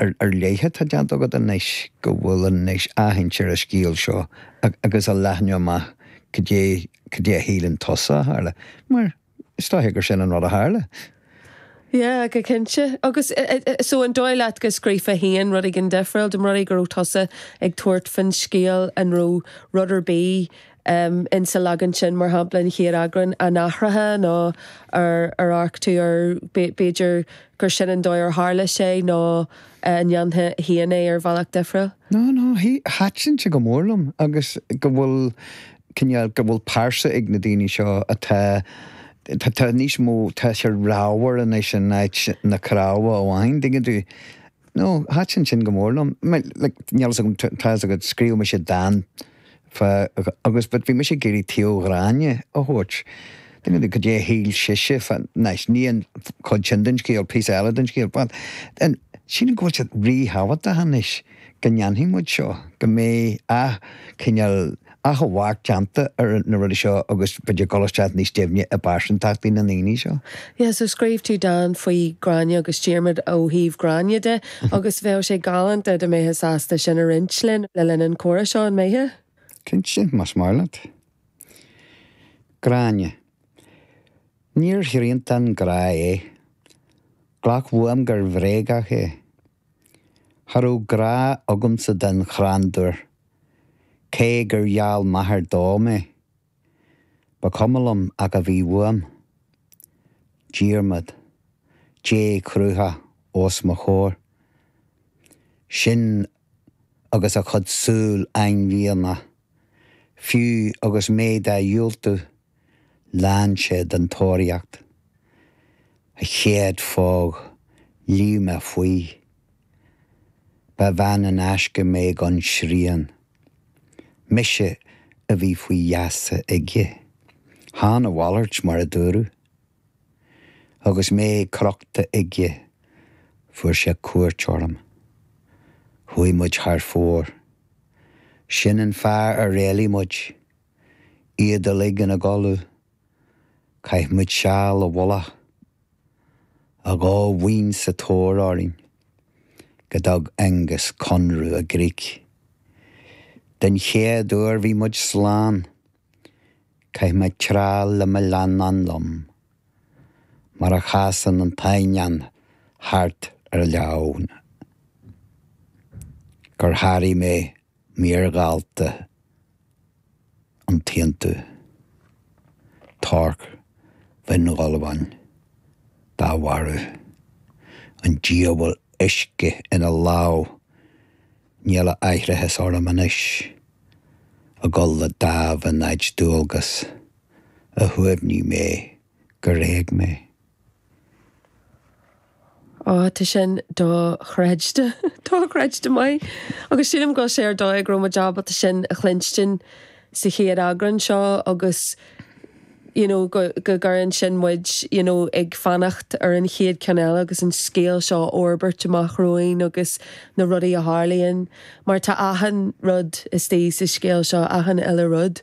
ar leith atá déanta agat anois go bhfuil an anois aithint ar an scéal seo agus a leathnú amach cad é a shíleann tusa a tharla, mar is dócha gur sin an rud a tharla? Yeah, go cinnte. Agus so an dóigh leat go scríobhfá féin rud éigin difriúil dá mba rud é go raibh tusa ag tabhairt faoin scéal an raibh rud ar bith insa leagan sin, mar shampla, an chéad eagrán, an athrófá nó ar ar amharc tú air, b'fhéidir gur sin an dóigh ar tharla sé nó an ndéanfá féin é ar bhealach difriúil? No, no, thaitin sé go mór liom agus go bhfuil cineál, go bhfuil pearsa ag na daoine seo atá, tá níos mó, tá sé ramhar anois in áit na cnámha amháin, dtuigeann tú? No, thaitin sin go mór liom. Like, níl a fhios agam, tá a fhios agat, scríobh mise dán Faoi, agus, but bhí mise ag iarraidh taobh Ghráinne a thabhairt. Didn't know cad é a shíl sise, anois, ní an chuid sin den scéal, píosa eile den scéal, but then, sílim go bhfuil sé ríthábhachtach anois go ndéanfaidh muid seo, go mbeidh ath, cineál, athamharc déanta ar na rudaí seo agus muid ag dul isteach níos deimhne i bpearsantachtaí na ndaoine seo. Yeah, so scríobh tú dán faoi Ghráinne agus Diarmaid ó thaobh Ghráinne de. Agus bheadh sé galánta dá mbeitheá sásta sin a roinnt linn le linn an comhrá seo, an mbeitheá? Cinnte, más maith leat. Gráinne, Níor thriantán grá é. Glac uaim gur bhréagach é. Cha raibh grá agamsa don chrandúir, cé gur gheall m'athair dó mé. Ba chuma liom ach a bhí uaim. Diarmaid. Dea-chruthach os mo chomhair. Sin agus a chuid súl ainmhianach. Fiú agus mé dá dhiúltú, lean sé den tóraíocht. A chéad phóg, luigh mé faoi. Ba bhean in aisce mé gan srian. Mise a bhí faoi gheasa aige. Chan a mhalairt, mar a dúradh. Agus mé crochta aige, fuair sé cuairt orm. Chuaigh muid thar fóir. Sin an fáth ar éalaigh muid. Iad uilig ina gcodladh. Chaith muid seal i bhfolach, a dhá bhuíon sa tóir orainn, go dtug Aonghas conradh i gcrích. Den chéad uair bhí muid slán. Chaith mé tráth le mo leannán liom, mar a chasann an t-eidhneán thart ar leamhan, gur sháraigh mé Níor dhalta an t-aontú Torc Bhinn Ghulbháin dá mharú. An diabhal uisce ina lámh, níl aithreachas orm anois a dhul le dáimh in áit dualgas, a shuaimhnigh mé gur éag mé. Ó, tá sin dochreidte, dochreidte maith, agus sílim go bhfuil sé ar dóigh go raibh muid ábalta sin a chluinstin sa chéad eagrán seo agus you know go gcuireann sin muid you know ag fanacht ar an chéad ceann eile agus an scéal seo a fhorbairt amach romhainn agus na rudaí a tharlaíonn mar tá achan rud istigh sa scéal seo, achan uile rud.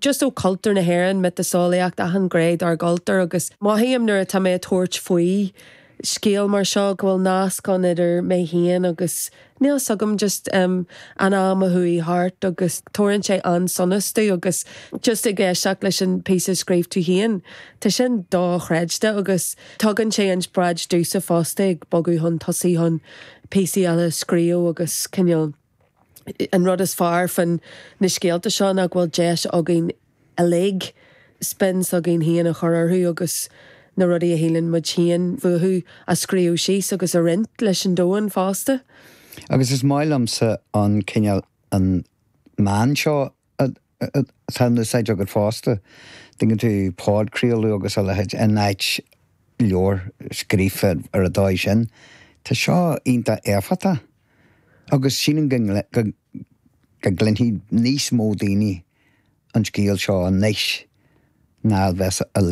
just ó cultúr na hÉireann, miotaseolaíocht, achan ghné dár gcultúr agus mothaím nuair atá mé ag tabhairt faoi scéal mar seo go bhfuil nasc ann idir mé féin agus níl fhios agam, just em, an am a chuaigh thart agus tabharann sé an-sonas domh agus just ag éisteacht leis an píosa a scríobh tú féin, tá sin dochreidte agus tugann sé inspioráid domhsa fosta ag bogadh chun tosaigh chun píosaí eile a scríobh agus cineál. An rud is fearr fá na scéalta seo ná go bhfuil deis againn uilig spin s'againn féin a chur orthu agus na rudaí a shíleann muid féin fúthu a scríobh síos agus a roinnt leis an domhan fosta. Agus is maith liomsa an cineál an meán seo atá in úsáid agat fosta. Tuigeann tú podchraoladh agus a leithéid in áit leabhar scríofa ar an dóigh sin. Tá seo iontach éifeachtach agus sílim go go gcluinfidh níos mó daoine an scéal seo anois ná a bheas a